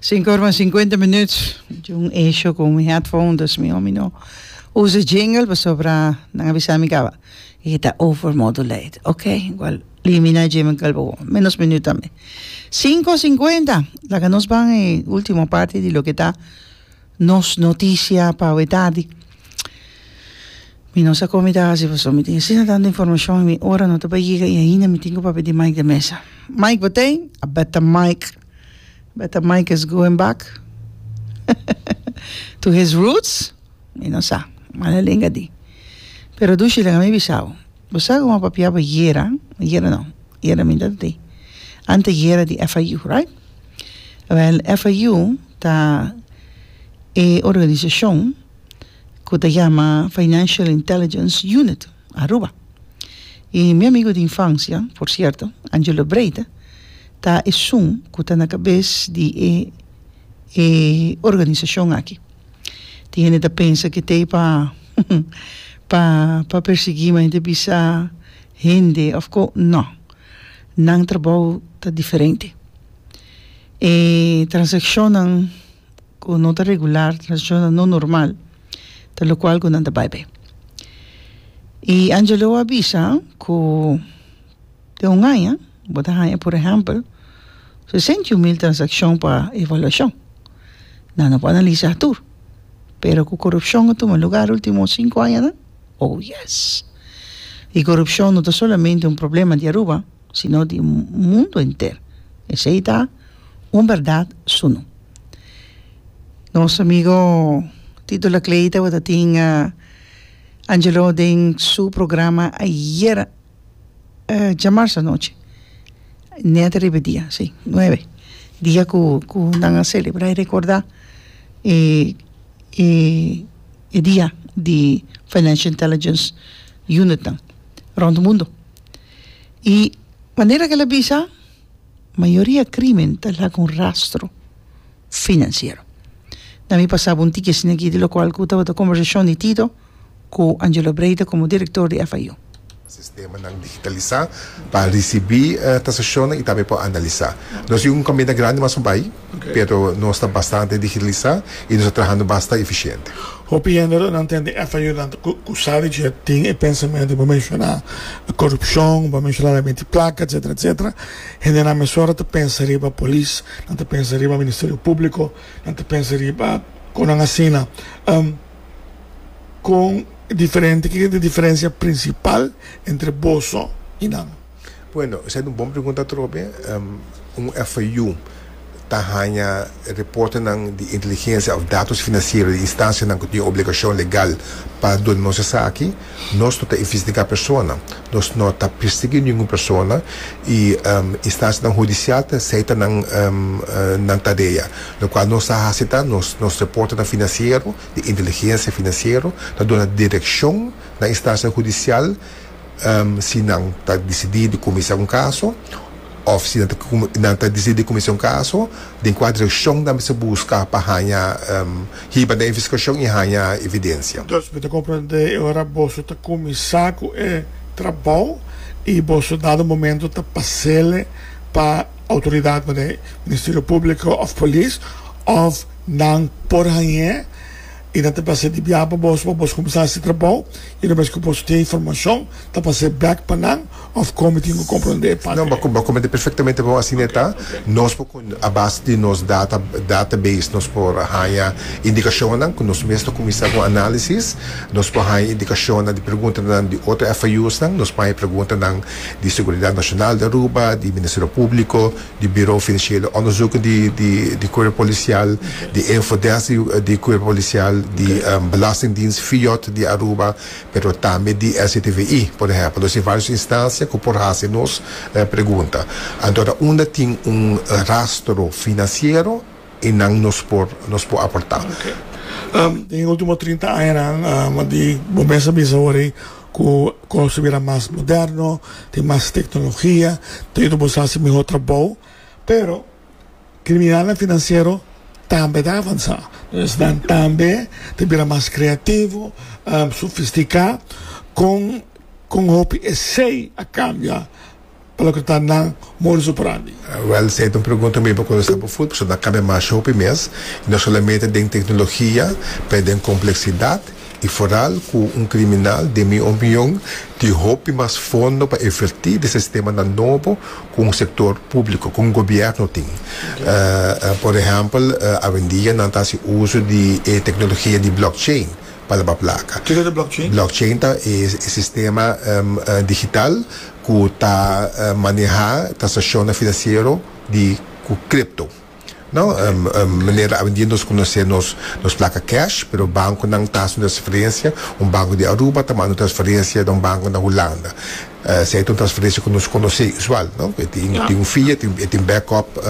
Sinku orman sinkuenta minut. Jun esho ku mi headphone, dus mi homi no usa jingle pasobra nan a bisa mi kaba e ta over modulate. Ok, igual limina jingle kalbo menos minut tambe. Sinku sinkuenta laga nos ban e ultimo parti di loke ta Nos noticia pa we tardi. Mi no sa con mi ta haci paso mi tin asina tanto informacion y mi ora no ta pa yega y ainda mi tin cu papia di Mike den mesa. Mike bo tin? A beta Mike. Beta Mike is going back to his roots? Mi no sa. Mala lenga di. Pero Dushi laga mi bisa bo. Bo sa como a papiaba yera, yera no, yera mi dat de, ante yera di FIU, right? Well, FIU ta e organisacion cu ta yama Financial Intelligence Unit Aruba. Y mi amigo di infancia, por cierto, Angelo Breita, ta esun cu ta na cabez di e, e organisacion aki. Tin hende ta pensa ku e ta pa pa pa persiguí mi a hende ta bisa hende of ko no nan trabou ta diferente e transakshonnan ku no ta regular transakshonnan no normal ta lokual ku nan ta bai be i Angelo a bisa ku Den un aña bo ta haña por ehèmpel sesenta i un mil transakshon pa evaluashon. Nan no por analisá tur, pero ku korupshon a tuma lugá último sinku añanan? Oh, yes! I korupshon no ta solamente un problema di Aruba, sino di mundu henter. Esei ta un bèrdat sunu. Nos amigo Tito Laclée tabata tin Angelo den su programa ayera. djamarsa anochi net riba dia si nuebe dia ku ku nan a celebra y recorda e e e dia di financial intelligence unit nan rond di mundo y manera kila bisa mayoria crimen ta laga un rastro. financiero. Na mi pasaba un tiki asina aki di locual cu tabata conversacion di Tito cu Angelo Breita como director di FIU. Sistemanan digitalisá pa risibí transakshonan i tambe por analisá. Nos tin un inkonbiente grandi mas pa bai, pero nos ta bastante digitalisá i nos ta trahando basta efisiente. Hopi hende lo nan tende FIU nan ta kusá di dje tin e pensamentu bo menshoná, korupshon, bo menshoná lei miti plaka, etsetera, etsetera. Hendenan mesora ta pensa riba polis Nan ta pensa riba Ministerio Públiko, nan ta pensa riba kon nan asina. Kon diferente, kiko ta e diferensia prinsipal entre boso i nan? Bueno, esei ta un bon pregunta atrobe. Un FIU ta haña reportenan di inteligensia òf datos finansiero di instansianan ku tin obligashon legal pa duna nos esaki. Nos no ta investigá persona, nos no ta persiguí ningun persona i instanshanan hudisial ta seita nan nan kadea. Lokual nos ta hasi ta nos nos reportenan finansiero di inteligensia finansiero ta duna direkshon na instansha hudisial si nan ta disidí di kuminsá un kaso. Òf si nan ta disidí kuminsá un kaso, den kua direkshon nan mester buska pa haña hiba den e investigashon i haña evidensia? Dos, mi ta komprendé e ora boso ta kuminsá ku e trabou i boso dado momentu ta pas'el pa outoridatnan den Ministerio Públiko òf Polis òf nan por hañ'é. I nan ta pas'é di biaha pa bos pa bos kuminsá hasi trabou i no mester ku bos tin e informashon ta pas'é bèk pa nan òf kon mi tin ku komprendé e parte No, bo bo komprendé perfektamente bon asina e ta. Nos por kon a base di nos data database nos por haña indikashonnan ku nos mes ta kuminsá ku análisis, nos por haña indikashonnan di preguntanan di otro FIUsnan, nos paña e preguntanan di Seguridat Nashonal di Aruba, di Ministerio Públiko, di Buro Financiero Onderzoeken di di Cuerpo Policial, di Infodesk di Cuerpo Policial, di Belastingdienst Fiot di Aruba, pero tambe di SCTVI, por ehempel. Nos tin varios instancia cu por haci nos pregunta. Anto ta unda tin un rastro financiero y nan nos por nos por aporta. Den e ultimo trinta añanan, di bo mester bisa awor ei. Ku kos ta bira mas moderno, tin mas teknologia, ta yuda boso hasi mihó trabou. Pero kriminalnan finansiero tambe ta avansá. Entonces nan tambe ta bira mas kreativo, sofistiká kon hopi esei a kambia. pa loke ta nan modus operandi. Wèl, si ey ta un pregunta mei pa konversá por fut, pasobra a kambia masha hopi mes, i no solamente den teknologia, pero den kompleksidat i foral ku un kriminal, den mi opion, tin hopi mas fondo pa invertí den sistemanan nobo ku un sektor públiko, ku un gobièrnu tin. Por ehèmpel, awendia nan ta hasi uso di e teknologia di blockchain pa laba plaka. Kiko ta blockchain? Blockchain ta e sistema digital ku ta manehá transakshonnan finansiero di ku kripto. No manera awendia nos konosé nos nos plaka kèsh, pero bankonan ta hasi un transferensia, un banko di Aruba ta manda un transferensia na un banko na Hulanda. Esei ta un transferensia ku nos konosé usual, no. E tin un fee, e tin backup,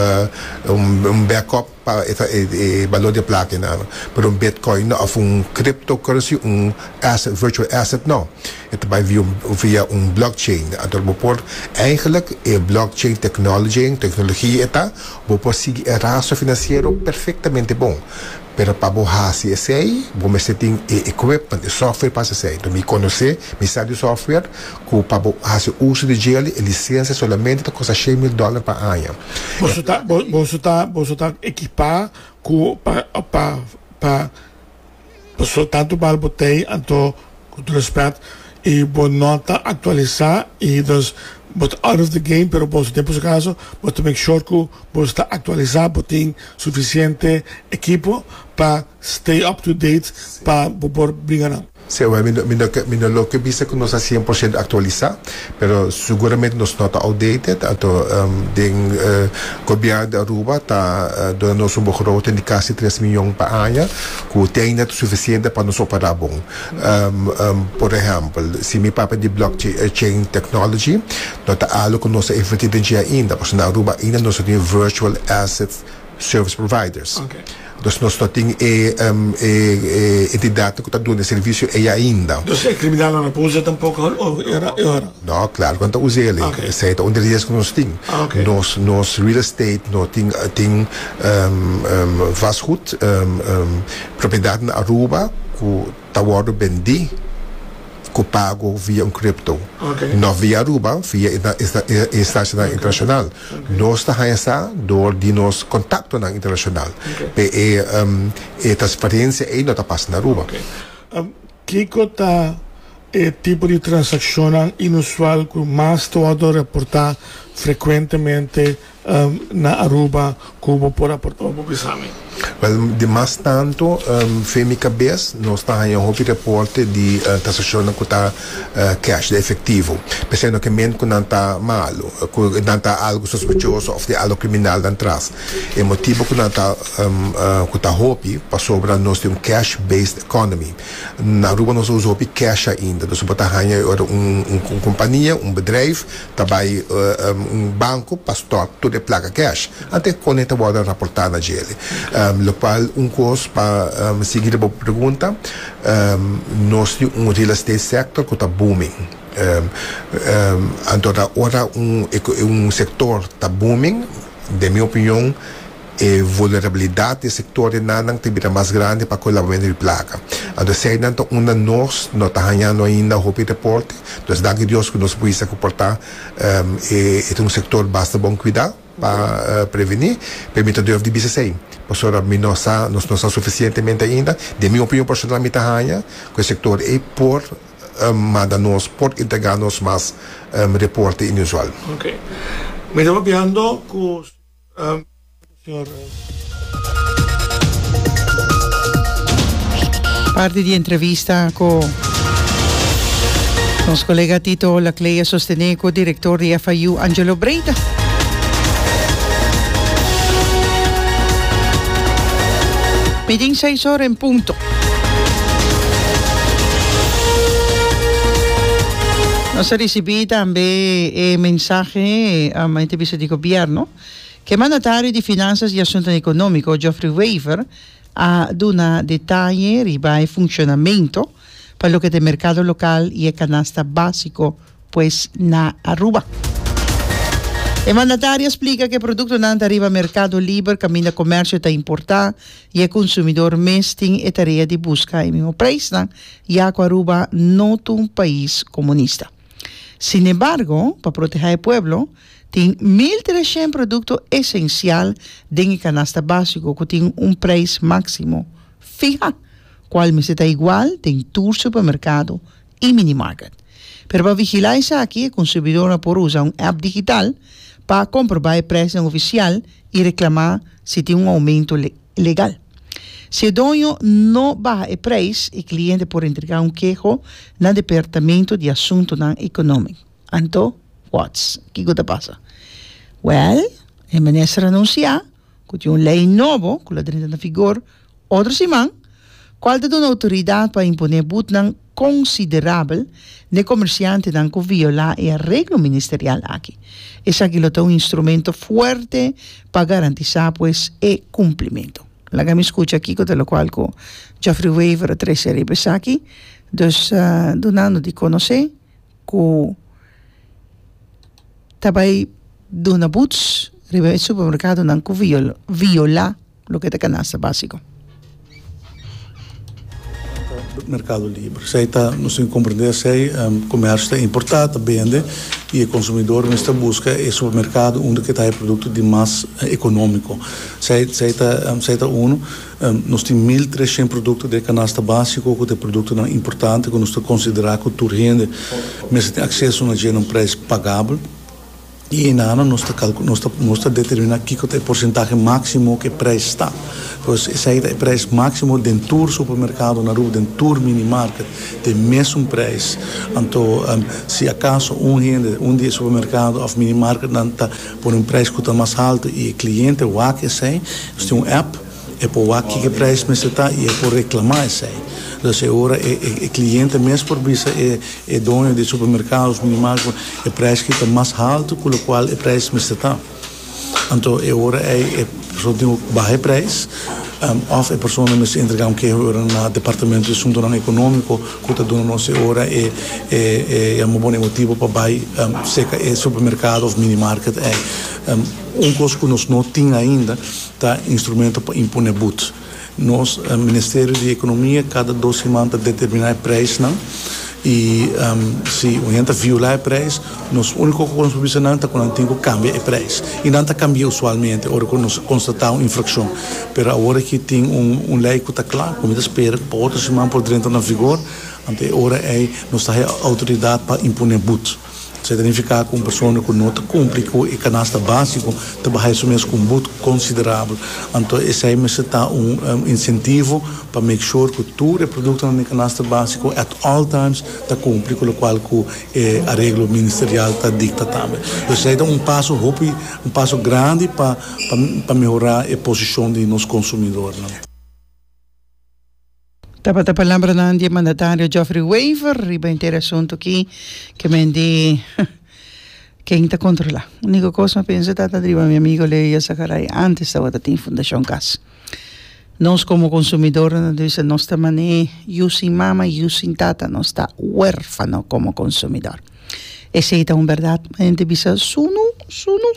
un backup. pa e balor di e plaka enan. Pero un bitcoin no, of un cryptocurrency, un asset, virtual asset no. E ta bai via un blockchain. Anto bo por, eigenlik e blockchain technology, tecnologia e ta, bo por sigui e rastro financiero perfectamente bon. Pero pa bo haci esey, bo mester tin e equipment, e software pa haci esey. Mi conoce, mi sa di software, Ku pa bo hasi uso di jail di e lisensia solamente ta kosta shei mil dòler pa aña. Boso ta boso ta boso ta ekipá ku pa pa pa boso tantu bal botei anto ku tur respèt i bo no ta aktualisá i dus bo ta out of the game pero boso den por si kaso boso ta make sure ku boso ta aktualisá bo tin sufisiente ekipo pa Stay up to date pa bo por bringa nan. Sí, awor mi no lo ke bisa ku nos a cien por ciento aktualisá, pero seguramente nos no ta outdated, anto den Gobièrnu di Aruba ta duna nos un begroting di kasi tres mion pa aña ku te ainda ta sufisiente pa nos operá bon. Por ehèmpel, si mi papia di blockchain technology no ta algu ku nos a invertí den dje ainda, pasobra na Aruba ainda nos no tin virtual assets, Service providers. Dus nos no tin e entidatnan ku ta duna e servisio ei ainda. Dus e kriminalnan no por usa tampoko e ora? No, klaro ku nan ta usa el. Esei ta un di riesgo ku nos tin. Nos real estate no tin vastgoed, propiedatnan Aruba ku. ta wordo bendi cu pago via un crypto, no via Aruba, via e instancianan internacional. Nos ta haña sa door di nos contactonan internacional. Pe e e transferencia ey no ta pasa na Aruba. Kico ta e tipo di transaccionnan inusual cu mas ta wordo reporta frecuentemente na Aruba ku bo por aporta bo bisámi? Wèl, di mas tantu fe mi kabes nos ta haña hopi reporte di transakshonnan ku ta cash, di efektivo. P'esei no ke mente ku nan ta malu, ku nan ta algu sospechoso òf tin algu kriminal nan tras. E motibu ku nan ta ku ta hopi pasobra nos tin un cash-based economy. Na Aruba nos ta usa hopi cash ainda. Nos a por ta haña e ora un kompania, un bedrijf, ta bai un banco pa stop tur e placa cash ante cone ta wordo raporta na djele locual un cos pa sigui riba bo pregunta nos tin un real estate sector cu ta booming anto ora un sector ta booming den mi opinion E vulnerabilidat di e sektornan nan ta bira mas grandi pa kolabamentu di plaka. Anto esei nan ta unda nos no ta hañando ainda hopi reporte. Nos danki Dios ku nos buista ku por ta e ta un sektor basta bon kuidá pa prevení, pero mi ta durf di bisa esei pasobra mi no sa nos no sa sufisientemente ainda. Den mi opinion personal mi ta haña ku e sektor ei por manda nos por entregá nos mas reporte inusual. Mi ta papiando ku. Parti di entrevista cu nos colega Tito Olaclay a sostene cu director di FIU Angelo Breda. Midin seis ora en punto. Nos a ricibi tambe e mensahe ama e ta bisa di gobierno. Ke mandatario di Finanzas i Asuntonan Economico, Geoffrey Wever, a duna detaye riba e funcionamento pa loke ta e mercado local i e canasta basico, pues na Aruba. E mandatario splica cu e productonan ta riba mercado liber caminda comercio ta importa y e consumidor mes tin e tarea di busca e mismo prijsnan ya cu Aruba no ta un pais comunista. Sinembargo, pa proteha e pueblo, tin mil trecient producto esencial den e canasta basico cu tin un prijs maximo fiha, cual mester ta igual den tur supermercado i mini market. Pero pa vigilá esaki e konsumidornan por usa un app digital pa komprobá e presnan ofisial i reklamá si tin un oumentu legal. Si e doño no baha e preis, e kliente por entregá un keho na Departamentu di Asuntunan Ekonómiko. Anto wòts kiko ta pasa? Wèl, e minister anunsiá ku tin un lei nobo ku lo drenta na figor, Otro siman, kual ta duna outoridat pa imponé butnan konsiderabel n'e komersiantenan ku violá e areglo ministerial aki. Esaki lo ta un instrumento fuerte pa garantisá pues e kumplimentu. Laga mi skucha kiko ta lokual ku Geoffrey Wever a trese riba esaki, dus dunando di konosé ku ta bai duna buts riba e supermerkadonan ku violá. Loke ta kanasta básiko? Merkado liber. Esei ta, nos tin ku komprendé esei, komersio ta importá, ta bende i e konsumidor mester buska e supermerkado unda ke ta haya produkto di mas ekonómiko. Esei, esei ta, esei ta unu. Nos tin mil tres shent produkto den e kanasta básiko ku ta e produktonan importante ku nos ta konsiderá ku tur hende mester tin akseso na dje na un preis pagabel. I hinana nos ta calcu, nos ta, nos ta determina kico ta e porcentahe maximo cu e prijs ta. Pues esey ta e prijs maximo den tur supermercado na Aruba, den tur minimarket, ta e mesun prijs. Anto, si acaso un hende, un di e supermercado of minimarketnan ta pone un prijs cu ta mas alto y e cliente wak esey, nos tin un app, E por wak kiko e prijs mester ta y e por reclama esey. Entonces e ora e cliente mes por bisa e doño di supermercados minimal cu e prijs ki ta mas halto cu locual e prijs mester ta. Anto e ora ey e persona tin cu baha e prijs of e persona mester entrega un keho e ora na departamento di suntonan economico cu ta duna nos e ora e yama bo e motibo pa bay seca e supermercado of minimarket ey. Un cos cu nos no tin ainda. Ta instrumento pa impone bud. Nos Ministerio di Economia cada dos siman ta determina e prijsnan y si un hende ta viola e prijs nos unico cosa cu nos por bisa nan ta cu nan tin cu cambia e prijs y nan ta cambia usualmente ora cu nos constata un infraccion pero awor aki tin un ley cu ta cla cu mi ta spera cu pa otro siman por drenta na vigor anto e ora ey nos ta haya autoridad pa impone bud. Esei ta nifiká ku un persona ku no ta kumpli ku e kanasta básiko ta bahai su mes ku un but konsiderabel. Anto esei mester ta un insentivo pa make sure ku tur e produktonan den kanasta básiko at all times ta kumpli ku lokual ku e areglo ministerial ta dikta tambe. Dus esei ta un paso hopi, un paso grandi pa pa mehorá e posishon di nos konsumidornan. Tabata palambranan di e mandatario Geoffrey Wever riba henter e asuntu aki, kemen di ken ta kontrolá. Úniko kos mi a pensa ta ta riba mi amigo Leia Zacaray ántes tabata tin Fundashon Kas. Nos komo konsumidornan ta bisa nos ta man'é yu sin mama, yu sin tata, nos ta wérfano komo konsumidor. Esei ta un bèrdat, ma henter bisa sunu, sunu.